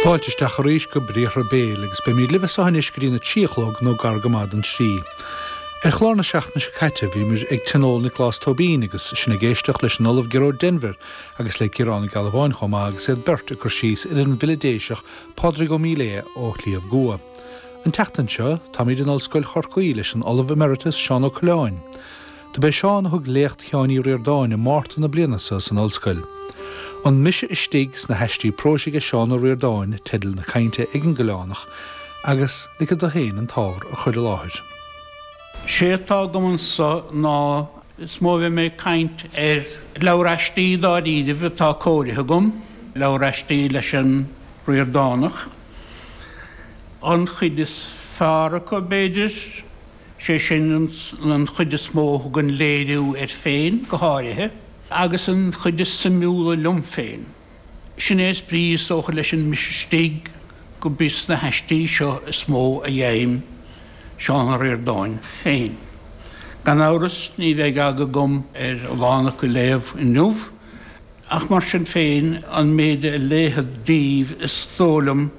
Fáilte isteach arís go Briathra Béil agus beimíd libh as so anois go dtí na trí a chlog nó gar go maith don trí. Ar chlár na seachtaine seo caite bhíomir ag tionól Niocláis Tóibín agus sinn ag éisteacht leis an Ollamh Gearóid Denvir agus le Ciarán Ó Gealbháin chomh maith agus iad beirt ag cur síos ar an bhfile Déiseach Pádraig Ó Miléadha ó Shliabh gCua. An tseachtain seo táimíd in Ollscoil Chorcaí leis an Ollamh Emeritus Seán Ó Coileáin. Do b'é Seán a thug léacht Sheáin Uí Ríordáin i Márta na bliana so san Ollscoil. An Mise Istigh sna hAistí Próis aige Seán Ó Ríordáin teideal na cainte ag an gCoileánach agus ligfead dó féin an t-ábhar a chur i láthair. 'Sé atá agam anso ná is mó a bheidh mé ag caint ar leabhar aistí dáiríribh atá cóirithe agam, leabhar aistí leis an Ríordánach. An chuid is fearr acu, b'fhéidir. sé sin an chuid is mó a thugann léiriú air féin go háirithe, agus an chuid is suimiúla liom féin. Sin é is brí is dócha leis an Mise Istigh gurb ins na haistí seo is mó a gheibheam Seán Ó Ríordáin féin. Gan amhras ní bheidh aga agam ar a lán acu a léamh inniu, ach mar sin féin an méid a léifead díbh is dóigh liom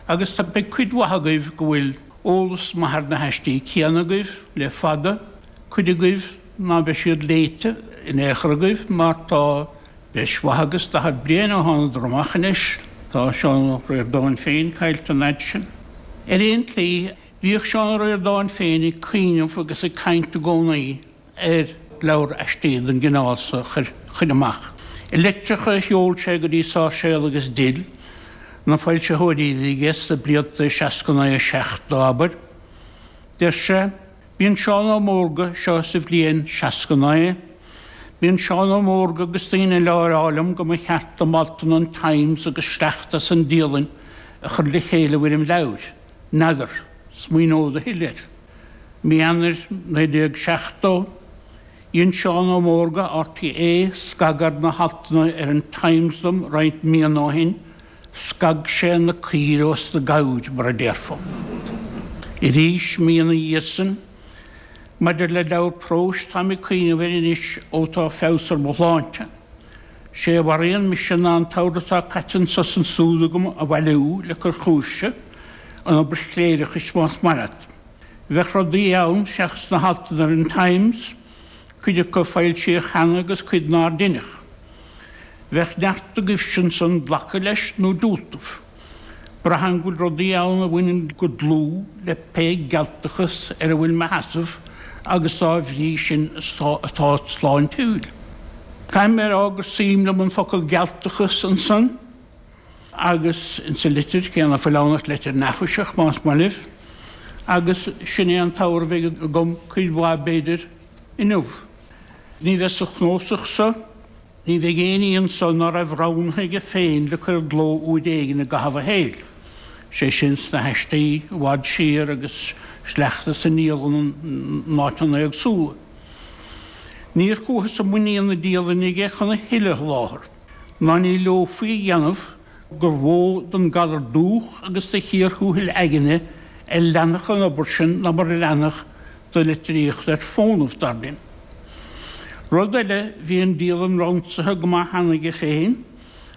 agus beidh cuid mhaith agaibh go bhfuil, Eolas maith ar na haistí céanna agaibh le fada, cuid agaibh ná beidh siad léite in aon chor agaibh mar tá breis mhaith agus daichead bliain ó thánadar amach anois. Tá Seán Ó Ríordáin féin caillte an fhaid sin. Ar aon tslí, bhíodh Seán Ó Ríordáin féin ag cuimhneamh agus ag caint i gcónaí. ar leabhar aistí den gcineál so a chur amach. I litreacha a sheol sé go dtí Sáirséal agus Dill, na foilsitheoirí a bhí aige sna blianta 69 70, abair, deir sé, 'Bíonn Seán Ó Mórdha, seo sa bhliain 69, 'Bíonn Seán Ó Mórdha agus daoine eile á rá liom go mba cheart dom altanna an Times agus sleachta as an Dialainn a chur le chéile i bhfoirm leabhair. N'fheadar. Smaoineod a thuilleadh air. Mí Eanair 1970, dhein Seán Ó Mórdha, RTÉ, scagadh ar na haltanna ar an Times dom roinnt míonna ó shin, scag sé na caoire ós na gabhair, mar a déarfá. Arís, mí ina dhiaidh san, Maidir le leabhar próis, táim ag cuimhneamh air anois ó tá feabhas ar mo shláinte. 'Sé a mharaíonn mise ná an t-ábhar atá caite anso 's ansúd agam a bhailiú le cur chugaibhse, an obair chléireachais más maith leat. Bheadh rudaí ann seachas na haltanna ar an Times, cuid acu a foilsíodh cheana agus cuid nár deineadh. Bheadh neart agaibhse ansan glacadh leis nó diúltamh. Braithim go bhfuil rudaí ann a bhaineann go dlúth le pé gealtachas ar a bhfuil mo sheasamh agus dá bhrí sin atá sláintiúil. Caithfidh mé a rá gur suim liom an focal gealtachas ansan agus insa litir cé ná fuil ann ach litir neafaiseach más maith libh, agus sin é an t-abhar a bheidh agam cuid mhaith b'fhéidir inniu. Ní bheidh sa chnósach so Ní bheidh éinní annso ná raibh roghnaithe aige féin le cur i gcló uair éigin i gcaitheamh a shaeil, sé sin sna h-aistí i bhfad siar agus sleachta as an ndialann in áiteanna éagsúla. Níor chuathas i muinín na dialainne aige chun a thuilleadh a sholáthar, ná ní leomhfaí a dhéanamh, gur mhó don galar dúch agus do chíor thuathail aigne a leanfadh an obair sin ná mar a leanfadh do litríocht ar fónamh, dar linn. Rud eile, bhí an dialann ransaithe go maith cheana aige féin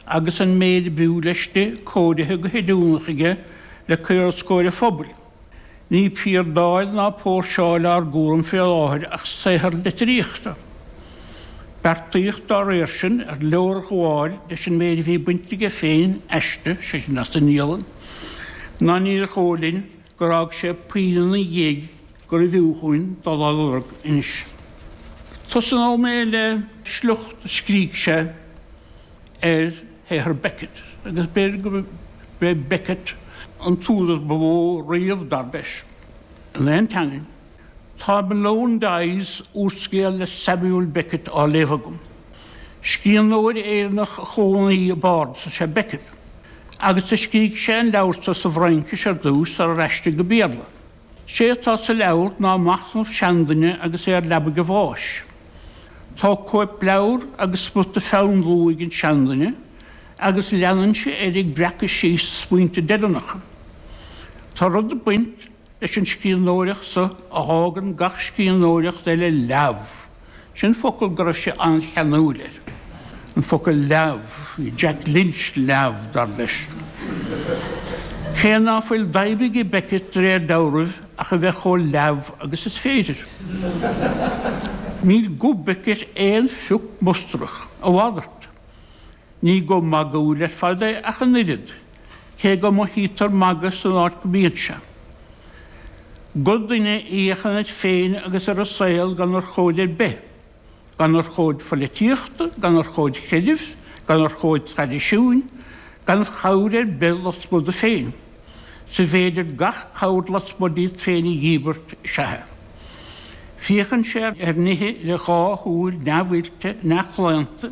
agus an méid a b'fhiú leis di cóirithe go hoiriúnach aige le cur os comhair an phobail. Ní piardáil ná póirseáil ár gcúram fé láthair ach saothar litríochta. Beartaíodh dá réir sin ar leorghabháil leis an méid a bhí bainte aige féin aisti, sé sin as an ndialann, ná níor dhó' linn gur fhág sé puinn ina dhiaidh gurbh fhiú dhúinn dul á lorg anois. Tosnóidh mé le sliocht a scrígh sé. ar shaothar Beckett agus b'fhéidir gurb é Beckett an t-údar ba mhó riamh, dar leis, in aon teangain. Tá Malone Dies, úrscéal le Samuel Beckett, á léamh agam. Scríbhneoir Éireannach a chónaigh i bPáras is ea Beckett, agus do scrígh sé an leabhar so sa bhFraincis ar dtús sarar aistrigh go Béarla. Sé atá sa leabhar ná machnamh seanduine agus é ar leabaidh a bháis. Tá cóipleabhar agus smut de pheann luaidhe ag an seanduine agus leanann sé air ag breacadh síos a smaointe deireanacha. Tá rud ag baint leis an scríbhneoireacht so a fhágann gach scríbhneoireacht eile leamh. Sin focal go raibh sé an-cheanúil air, an focal leamh, Jack Lynch leamh, dar leis. Cé ná fuil d'aidhm ag Beckett de réir deabhraimh ach a bheith chomh leamh agus is féidir. Níl guth Beckett aon phioc mustarach, a mhalairt. Ní guth magúil ar fad é ach an oiread. cé go mothaítear magadh san áit go mbíonn sé. Guth duine a fhéachann air féin agus ar an saol gan urchóid ar bith, gan urchóid pholaitíochta, gan urchóid chreidimh, gan urchóid traidisiúin, gan chabhair ar bith lasmuigh de féin, 's an féidir gach cabhair lasmuigh díot féin a dhíbirt, is ea. Féachann sé ar nithe le dhá shúil neamhoilte, neamhchlaonta.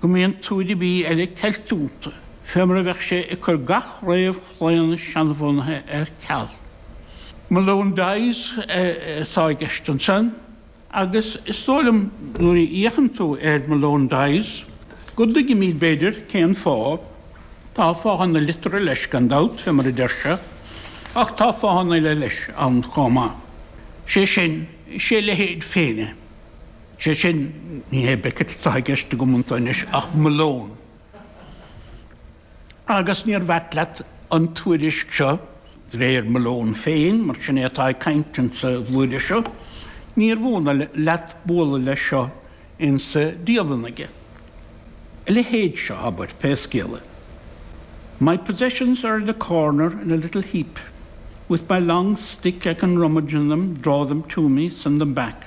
go mbíonn tuairimí eile ceilte iontu, fé mar a bheadh sé ag cur gach réamhchlaonadh seanbhunaithe ar ceal. Malone Dies atá i gceist ansan, agus is dóigh liom nuair a fhéachann tú ar Malone Dies go dtuigimíd, b'fhéidir, cén fáth. Tá fáthanna liteartha leis, gan dabht, fé mar a deir sé, ach tá fáthanna eile leis ann chomh maith. Sé sin, is é a leithéid féin é. Sé sin, ní hé Beckett atá i gceist agam iontu anois ach Malone. Agus níorbh ait leat an tuairisc seo, de réir Malone féin, mar sin é atá ag cainnt insa bhlúire seo, níorbh ionadh leat bualadh leis seo insa dialann aige. A leithéid seo, abair, pé scéal é. My possessions are in a corner in a little heap. With my long stick I can rummage in them, draw them to me, send them back.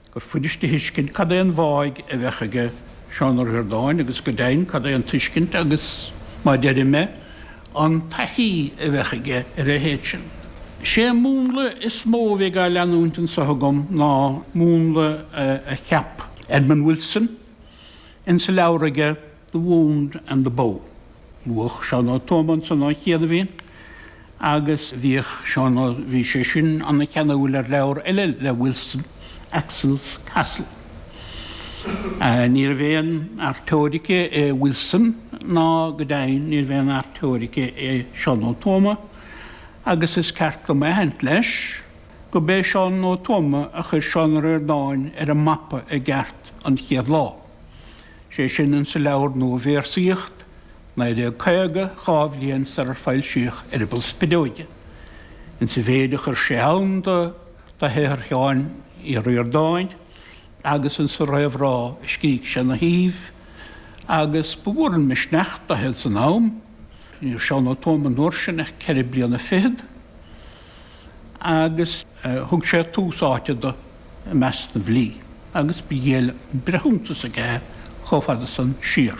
gur fuirist a thuiscint cad é an bháidh a bheadh aige Seán Ó Ríordáin agus go deimhin cad é an tuiscint agus, má deirim é, an taithí a bheadh aige ar a leithéid sin. Sé an múnla is mó a bheidh á leanúint anso agam ná múnla a cheap Edmund Wilson insa leabhar aige, The Wound and the Bow. Luadh Seán Ó Tuama annso ó chianaibhín agus bhíodh Seán Ó, bhí sé sin ana cheanúil ar leabhar eile le Wilson, Axel's Castle. Níorbh aon fhear teoirice é Wilson ná go deimhin níorbh aon fhear teoirice é Seán Ó Tuama agus is ceart dom a aithint leis go b'é Seán Ó Tuama a chuir Seán Ó Ríordáin ar an mapa i gceart an chéad lá. sé sin insa leabhar Nuabhéarsaíocht 1950, dhá bhliain sarar foilsíodh Eireaball Spideoige, insa mhéid a chuir sé ann do shaothar Sheáin Uí Ríordáin agus insa réamhrá a scrígh sé ina thaobh, agus ba mhór an misneach dó féin san am. Ní raibh Seán Ó Tuama an uair sin ach ceithre bliana fichead, agus thug sé tús áite do. i measc na bhfilí, agus ba dhiail an breithiúntas aige é chomh fada san siar.